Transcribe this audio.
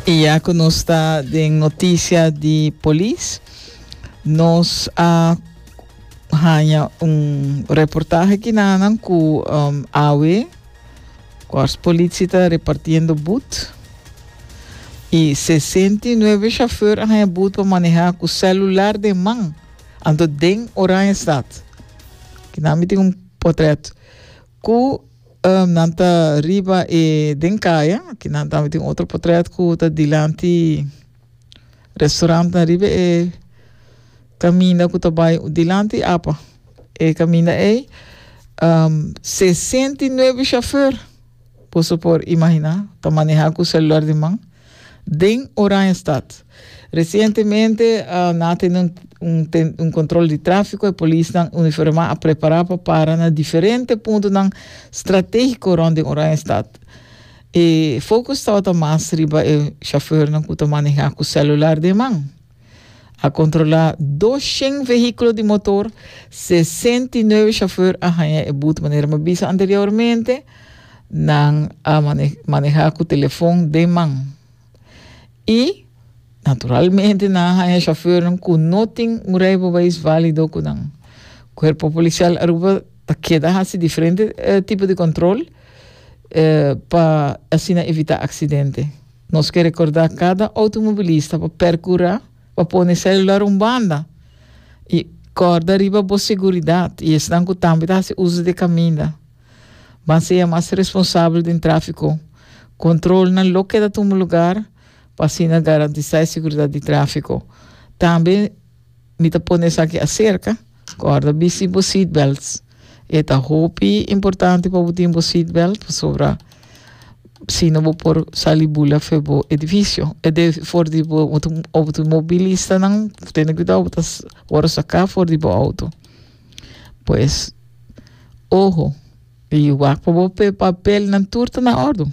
Y ya cu nos ta den noticia di polis, nos a haña un reportaje aki na nan cu um, awe Kors politie ta repartiendo boet y 69 chauffeur a haña boet pa maneha cu celular den man, anto den Oranjestad. Aquí na mi tin un portret. Ku nan ta riba e den kaya. Aki nan tambe tin otro potrèt ku ta dilanti restorannan riba e kaminda ku ta bai dilanti apa. E kaminda ei sesenta i nuebe shofèr. Boso por imaginá, ta manehá ku selular di man. Den Oranjestad. Resientemente nan a tene un control di tráfico, e polisnan uniformá a prepará pa para na diferente puntonan stratégico rond den Oranjestad. E focus tabata mas riba e chauffeurnan cu ta manehá cu celular den man. A controla dos shen vehiculo di motor, sesenta i nuebe chauffeur a haña e bute manera mi a bisa anteriormente, nan a maneha cu telefon den man y naturalmente nan a haña chauffeurnan cu no tin un rijbewijs valido cu nan. Cuerpo Policial Aruba ta keda haci diferente tipo di control pa asina evita accidente. Nos ke rekordá kada outomobilista pa perkurá pa pone e selular un banda i kòrda riba bo seguridat i esnan ku tambe ta hasi uso di e kaminda ban seya mas responsabel den tráfiko. Kontrolnan lo keda tumu lugar pa asina garantisá e seguridat di tráfiko. Tambe. Mi ta pone esaki aserka, kòrda bisti bo seatbelts. E ta hopi importante pa bo tin bo seatbelt pasobra si no bo por sali bula for bo edifisio, for di bo outomobilistanan tene kuidou bo ta wòrdu saká for di bo outo. Pues oho i wak pa bo papelnan tur ta na òrdu.